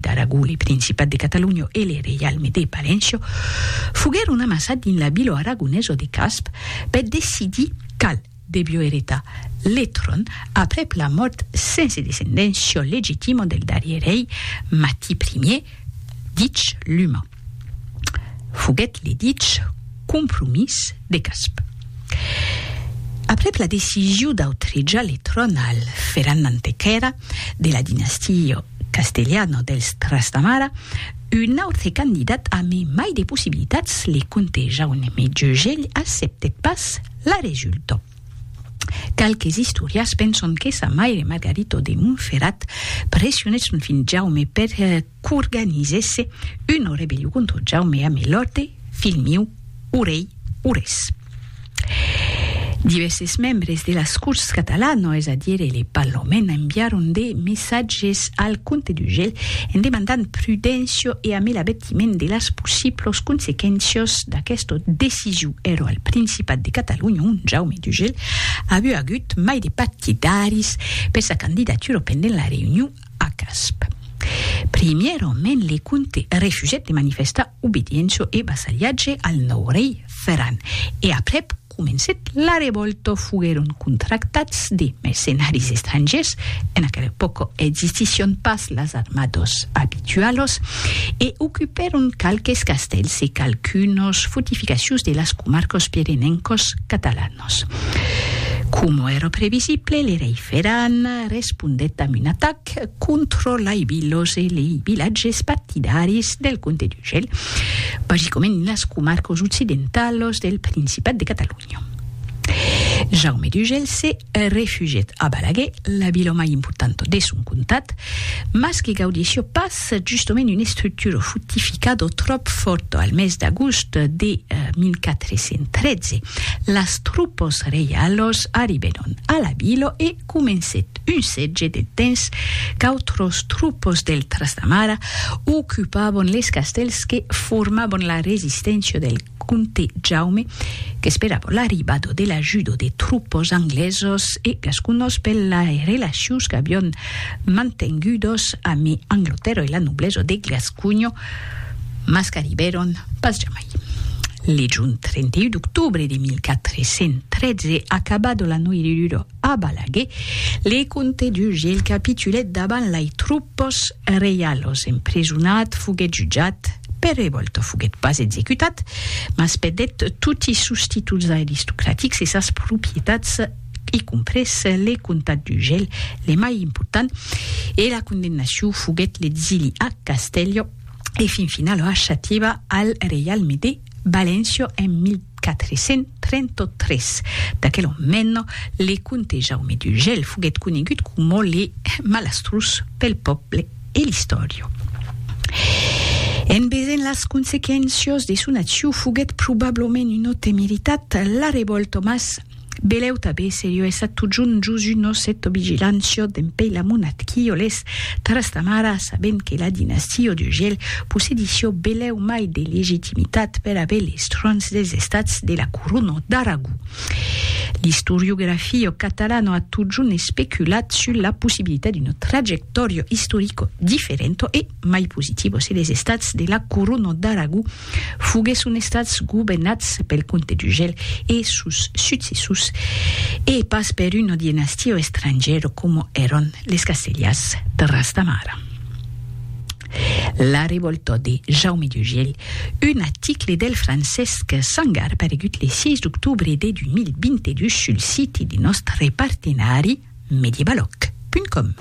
d'Aragó, le Principat de Catalonha e le Reialme de Palenço foguèron amassats dins la vila aragonesa de Casp per decidir qual devió eretar le tròn aprèp la mòrt sense descendéncia legitima del darrier rei Mati Ier, dich Luman. foguèt le dich compromís de Casp. Aprèp la decision d'autrejar le tròn al Ferran Nantequèra de la dinastia castelhana dels Trastamara, un autre candidat amé mai de possibilitats, le comte Jaume Jeugelh acceptèt pas la resulta. Qualques istorians penson que sa maire Margarito de Montferrat pressionèt son filh Jaume per qu'organizèsse una rebellion contra Jaume amé l'òrte, filh miu, o rei, o res. Divèrses membres de las Corts catalanas, es a dire le Parlament, enviaron de messatges al comte d'Urgell en demandant prudéncia e amé l'avètiment de las possiblas consequéncias d'aquesta decision. Èra al Principat de Catalonha ont Jaume d'Urgell aviá agut mai de partidaris per sa candidatura pendent la reünion Ac asp. Primièraument le comte refusèt de manifestar obediéncia e vassalhatge al nòu rei Ferran, e aprèp comencèt la revòlta. Foguèron contractats de mercenaris estrangièrs, en aquela epòca existission pas las armadas abitualas, e ocupèron qualques castèls e qualqu'unas fortificacions de las comarcas pirenencas catalanas. Nos. Coma èra previsible, le rei Ferran respondèt damb un atac contra lei vilas e lei vilatges partidaris del comte d'Urgell, basicament en las comarcas occidentalas del Principat de Catalonha. Jaume d'Urgell se refugièt a Balaguer, la vila mai importanta de son comtat, mas que gaudissia pas es justement una estructura fortificada tròp fòrta. Al mes d'agost de 1413, las tropas reialas arribèron a la vila e comencèt un sètge de temps qu'autras tropas del Trastamara ocupavan les castèls que formavan la resisténcia del Comte Jaume, qu'esperava l'arribada de l'ajuda de tropas anglesas e gasconas per las relacions qu'avián mantengudas amé Anglatèrra e la noblesa de Gasconha, mas qu'arribèron pas jamai. Lejont 31 d'octobre de 1413, acabada la noiridura, A Balaguer, le comte d'Uge el capitulèt davant lai troupes reialos, emprisonat, foguèt jutjat, per revòlta foguèt pas executat, mas perdèt toti sos títols aristocratics e sas propietats, i comprés le comtat d'Ugel, le mai important, e la condemnacion foguèt l'exili a Castèlho e fin finala a Xativa al reialme de. Valencio en 1433. D'aquel òn mèn, le comte Jaume d'Urgell foguèt conegut coma le malastrós pel pòble e l'istòria. En vesent las consequéncias de son accion foguèt probablament un òte meritat, la revòlta mas Beleu tabé serio essa totjun Josu nos eto vigilant sio dempei la monat quio les Trastamara sabent que la dinastio d'Ugiel possedi sio beleu mai de legitimitat per aver les trons des estats de la Coruno d'Aragó. L'istoriografio catalano a totjun especulat sul la possibilitat d'uno trajectorio istorico differento e mai positivo se les estats de la Coruno d'Aragó Foguèsson estats governats pel comte d'Ugel e sos successors e pas per una dinastia estrangièra coma èran les Castelhas de Ras de Mar. La revòlta de Jaume d'Ugel, un article del Francesc Sangar paregut le 6 d'octobre de 2022 sul siti de nòstre partenari medievalòc. Com.